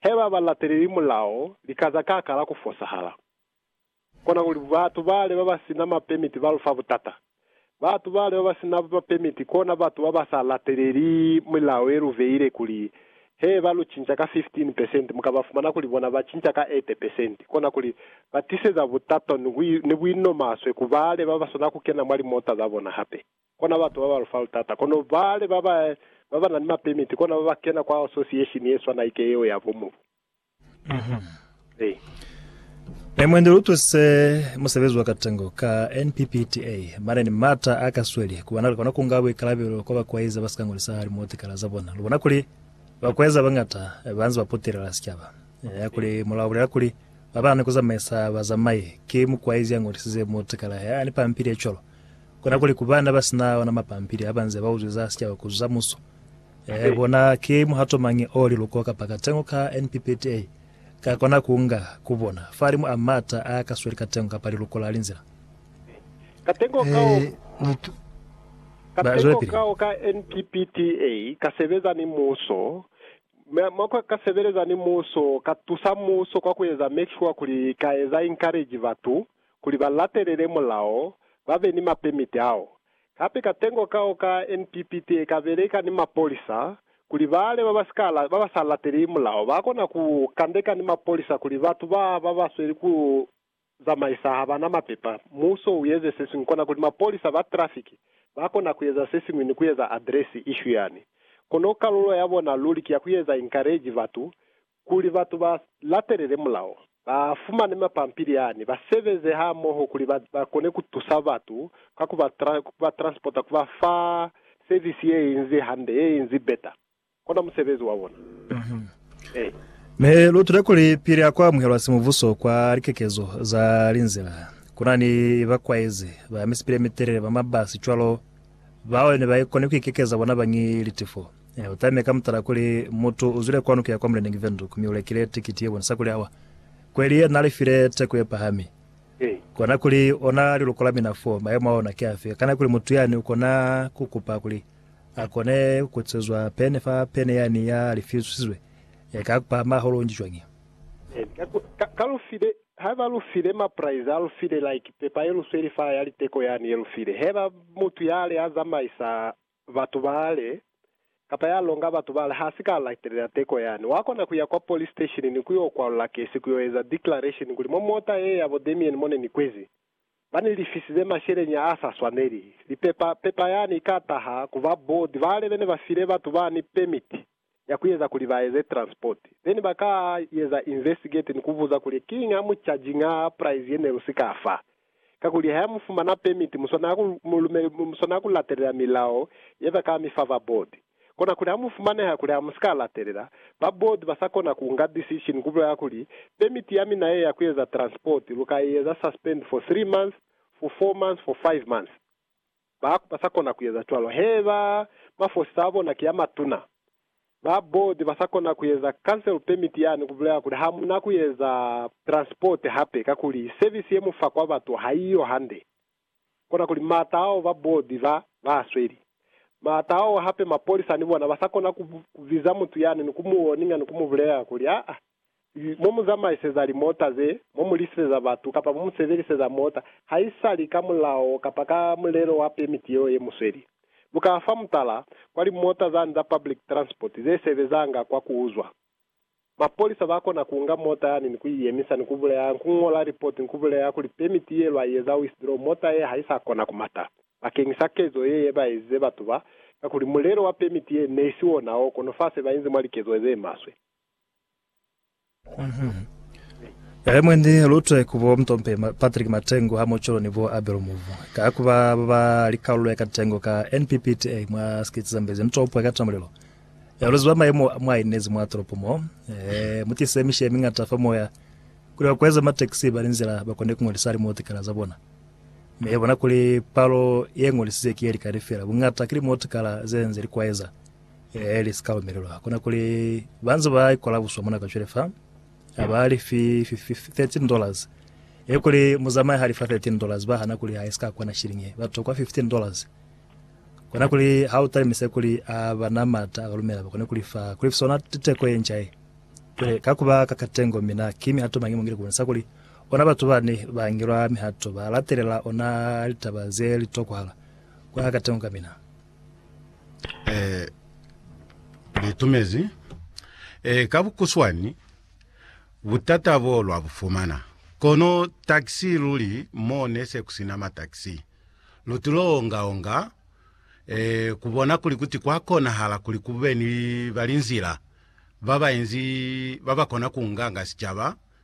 he ba ba lateleli mulao li ka za ka kala ku fosahala. Kona kuli batu bale ba ba si na mapemiti ba lu fa butata. Batu bale ba ba si na mapemiti kona batu ba ba sa lateleli milao ye lu beile kuli he ba lu cinca ka 15 pesenti mu ka ba fumana kuli bona ba cinca ka 80 pesenti. Kona kuli ba tiseza butata ni buinomaswe ku bale ba ba swana ku kena mwa limota za bona hape. Kona batu baba lufalu taata, kono bale baba baba na ni mapemiti kona baba kena kwa association ye swana ike yeo ya bo mubu. Hey. Ne mwendi lu tuse musebezi wa katengo ka NPPTA, mane ni mata a ka sweli ku bana lu kona ku nga buikalabelo kwa bakueza ba si ka ngolisa hali mwa tikala za bona. Lu bona kuli bakueza ba ngata ba nze ba putelela sicaba. Ya kuli mulao bulela kuli ba ba na ni ku zamaisa bazamai, ki mukuaizi ya ngolisize mwa tikala he a ni pampili ye cwalo. Kona kuli ku bana ba si na ona mapampili ha ba nze ba uzwi za sicaba ku za muso, ee, bona ki muhato mañi o liluko kapa katengo ka NPPTA ka kona ku nga ku bona fahalimu a m'ata a ka sweli katengo kapa liluko la linzila? Katengo kao ka NPPTA ka sebeza ni muso, mi mo ka ka sebeleza ni muso, ka tusa muso kwa ku eza make sure kuli ka eza encourage batu kuli ba latelele mulao, ba be ni mapemiti ao. Hape katengo kao ka NPPT e ka beleka ni mapolisa kuli bale ba ba sa lateli mulao ba kona ku kandeka ni mapolisa kuli batu ba ba ba sweli ku zamaisa ha ba na mapepa. Muso u eze se siñwi kona kuli mapolisa ba trafiki ba kona ku eza se siñwi ni ku eza address issue yani. Kono kalulo ya bona luli ki ya ku eza encourage batu Kuli batu ba latelele mulao, ba fumane mapampili a ne, ba sebeze hamoho kuli ba, ba kone ku tusa batu ka ku ba, tra, ku ba transporta, ku ba fa service ye inzi hande, ye inzi beta. Kona musebezi wa bona. Ee. Ne lu tuta kuli pili ha ku amuhelwa simubuso kwa likekezo za linzila, ku na ni bakwaizi ba misipili ye mitelele ba mabasi cwalo, Bao ne ba koni ku ikekeza bona bañi litifo. U tamile ka mutala kuli, Mutu u zwile kwanu ku ya kwa muleneñi Windhoek mi u lekile tikiti ye bonisa kuli awa kweli ye na lifile teko ye pahami. Kona kuli, ona liluko la mina foo, mayemo a ona ki afi? Kana kuli mutu yani u kona ku kupa kuli a kone ku kutisezwa pene fa pene yani ya lifisizwe? Eka ku pahama hahulu nji cwañi? Haiba lu file ma prize a lu file like pepa ye lu sweli fa ya liteko yani ye lu file heba mutu yale a zamaisa batu bale kapa ya longa batu bale ha si ka latelela teko yani wa kona kuya kwa police station ni ku yo kwalula kesi ku yo eza declaration kuli mwa mota ye ya bo Damien mo ne ni kwezi ba ni lifisize masheleña a sa swaneli lipepa pepa yani i ka taha ku ba board bale bene ba file batu bani permit ya ku eza kuli ba eze transport then ba ka eza investigate ni ku buza kuli kiñi a mu charginga price ye ne lu si ka fa. Kakuli ha ya mu fumana permit mu swanela ku mu lumele mu swanela ku latelela milao ye ba ka mi fa ba board. Kona kuli ha mu fumaneha kuli ha mu si ka latelela, ba board ba sa kona ku nga decision ku bulela kuli, Permit ya mina ye ya ku eza transport lu ka i eza suspend for three months, for four months, for five months. Ba ba sa kona ku eza cwalo, heba mafosisa a bona ki a matuna, ba board ba sa kona ku eza cancel permit yani, ku bulela kuli ha mu na ku eza transport hape kakuli service ye mu fa kwa batu ha i yo hande. Kona kuli maata ao ba board ba, ba a sweli. Maata ao hape mapolisa ni bona ba sa kona ku, ku biza mutu yani ni ku mu warninga ni ku mu bulelela kuli, Aa, mo mu zamaiseza limota ze, mo mu lisiseza batu, kapa mo mu sebeliseza mota, haisali ka mulao kapa ka mulelo wa pemiti yeo ye mu sweli. Lu ka fa mutala, kwa limota za nza public transport ze sebezanga kwa ku uzwa. Mapolisa ba kona ku nga mota yani ni ku i yemisa ni ku buleha, ni ku ñola lipoti ni ku buleha kuli pemiti ye lwa i eza withdraw, mota ye ha i sa kona ku mata. Bakeñisa kezo ye ye ba ezize batu ba, kakuli mulelo wa pemiti ye ne i si ona o kono fa se ba inzi mwa likezo ze maswe. Kae mwe ni lutwe ku bo Mtompe Ma- Patrick Matengu ha Mocholo ni bo Abel Muvu. Ka ku ba ba ba li kalulo ya katengo ka NPPTA mwa sikiti Zambezi mtopo ya katamulelo. Ya ulezi ba maimo a mwa inezi mwa tolopo mo. Eh, mu tise mishe mi ngata fa moya. Kuli ba kweza matekisi ba ni nzila ba kone ku ngolisa limotikala za bona. Mi ya bona kuli palo ye ngolisize ki ye likani fela. Bungata ki limotikala ze nze li kwaeza. Ee, li si ka lumelelwa. Kona kuli ba nze ba ikola buswa mona kacwale fa, ha ba li fi, fi, fi, fi 13 dollars. Ee, kuli muzamai ha li fa 13 dollars, ba hana kuli ha i si ka kwana shilling ye, ba tokwa 15 dollars. Kona kuli ha u talimisa kuli a ba na mata a ka lumela ba kone kuli fa, kuli fi sona teko ye nca ye. Cwale, ka ku ba ka katengo, mina, ki mihato mañi mo ngile ku bonisa kuli ona batu bani ba ngelwa mihato, ba latelela ona litaba ze li tokwahala? Ku na katengo ka mina. Eh, litumezi. Eh, ka bukuswani, butata bo lwa bufumana. Kono taxi luli mo ne se kusina ma taxi. Lu tulo onga onga, eh, kubona kuli kuti kwa konahala kuli kube ni balinzila ba bainzi ba bakona kunganga sicaba,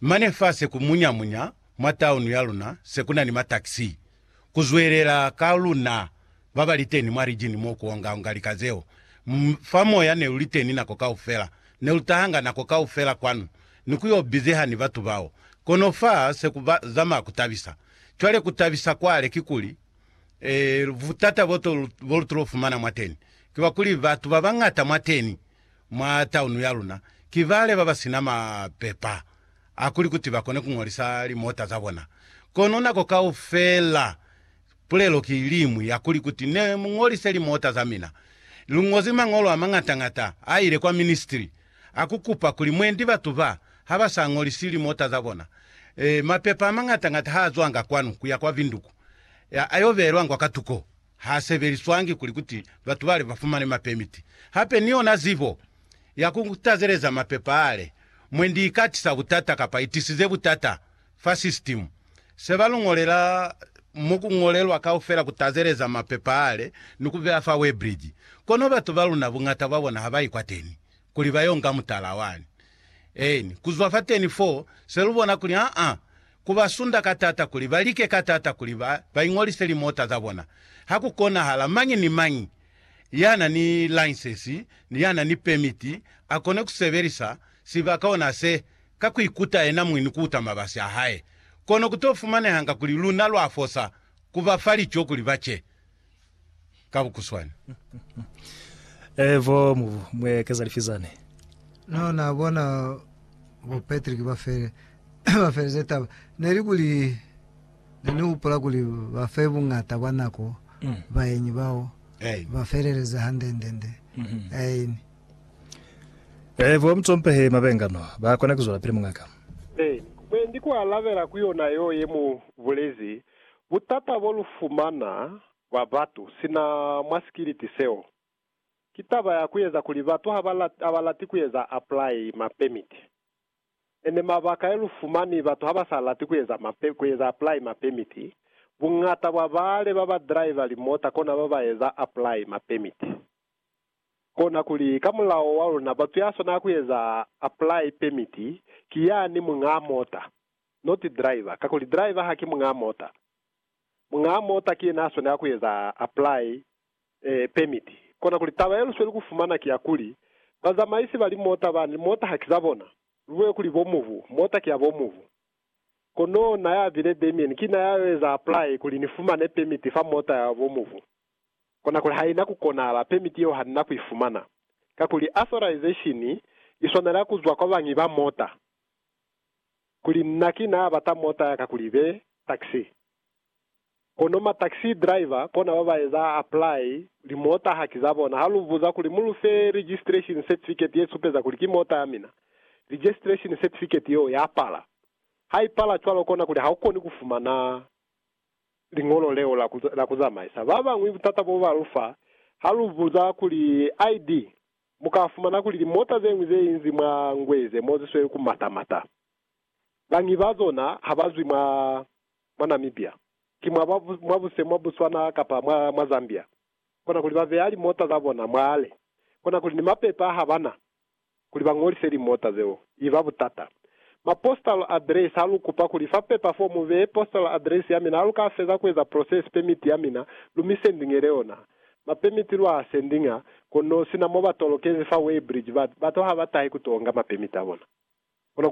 Mane fa se ku munya-munya mwa taunu ya luna, se ku na ni mataxi ku zwelela ka luna ba ba li teni mwa rijini mo ku onga-onga lika zeo. M, fa Moya ne lu li teni nako kaufela. Ne lu tahanga nako kaufela kwanu, ni ku yo bizeha ni batu bao. Kono fa se ku ba, zama ku tabisa. Cwale ku tabisa kwale kikuli, e, butata bo to, bo lu to fumana mwateni, kiba kuli batu ba bañata mwateni. mwa taunu ya luna ki bale ba ba sina mapepa a kuli kuti ba kone ku ñolisa limota za bona. Kono nako kaufela pulelo ki iliñwi ya kuli kuti ne mu ñolise limota za mina. Lu ñozi mañolo a mañata-ñata a ile kwa ministri a ku kupa kuli mwendi batu ba ha ba sa ñolisi limota za bona, e, mapepa a mañata-ñata ha a zwanga kwanu ku ya kwa vinduku, a yo beelwangwa ka tuko. ha sebeliswangi kuli kuti batu bale ba fumane mapemiti. Hape ni yona zibo ya ku tazeleza mapepa ale mwendi i ka tisa butata kapa i tisize butata fa sisitimu. Se ba lu ñolela mo ku ñolelwa kaufela ku tazeleza mapepa ale ni ku beya fa Weebridge. Kono batu ba luna buñata bwa bona ha ba ikwateni kuli ba yo nga mutala wani. Eeni, ku zwa fateni foo, se lu bona kuli aa ku ba sunda ka taata kuli ba like ka taata kuli ba, ba iñolise limota za bona. Ha ku konahala, mañi ni mañi ya na ni lainsensi, ni ya na ni pemiti, a kone ku sebelisa sibaka ona se, ka ku ikuta yena muñi ni ku uta mabasi a hae. Kono ku to fumanehanga kuli luna lwa fosa ku ba fa lico kuli ba ce. ka bukuswani. Eh, bo Mubu, mwe keza lifi zani? No na bona bo Patrick ba fele, ba feleze taba. Ne li kuli, ne ni hupula kuli ba fe bungata bwa nako Mm. baenyi bao, Ain. ba feleleze handendende. Mhm. Ain. Eh, bo Mutompehi Mabenga no, ba kona kuzwelapili, muñaka. Ain. Mwendi ku alabela ku yona yo ye mu bulezi, Butata bo lu fumana bwa batu sina mwa sikiliti seo, ki taba ya ku eza kuli batu ha ba lati ku eza apply ma permit. Ene mabaka e lu fumani batu ha ba sa lati ku eza ma ku eza apply ma permit, buñata bwa bale ba ba driver limota kona ba ba eza apply ma permit. Kona kuli ka mulao wa luna batu ya swanela ku eza apply permit ki yani muñaa mota. not driver, kakuli driver haki muñaa mota. Muñaa mota ki yena aswanela kueza apply eh, permit. Kona kuli taba yelusweli kufumana ki ya kuli, bazamaisi ba limota bani limota haki za bona, lubuye kuli bo mubu, mota ki ya bo mubu. Kono na ya bile Damien ki na ya yo eza apply kuli ni fumane permit fa mota ya bo mubu. Kona kuli haina ku konahala, permit yeo hanina ku ifumana. Kakuli authorization iswanela kuzwa kwa bañi ba mota. kuli nna ki naa bata mota ya ka kuli be taxi. Kono ma taxi driver kona ba ba eza apply li mota haki za bona. Ha lu buza kuli mu lu fe registration certificate ye supeza kuli ki mota ya mina, registration certificate yeo ya pala. Ha i pala cwalo kona kuli ha u koni ku fumana liñolo leo la ku zamaisa. Ba bañwi butata bo ba lu fa ha lu buza kuli ID Mu ka fumana kuli limota ze ñwi ze inzi mwa ngwe ze mo zi sweli ku mata-mata. Bañi ba zona ha ba zwi mwa, mwa Namibia. Ki mwa ba, mwa buse mwa Botswana kapa mwa, mwa Zambia. Kona kuli ba beya limota za bona mwale. Kona kuli ni mapepa ha ba na, kuli ba ñolise limota zeo. I ba butata. Ma postal address, ha lu kupa kuli fa pepa fo mu beye postal address ya mina, ha lu ka feza ku eza process permit ya mina, lu mi sendingele yona. Mapemiti lwa sending a kono sina mo ba tolokezi fa Weybridge, ba, batu ha ba tahi ku to nga mapemiti a bona.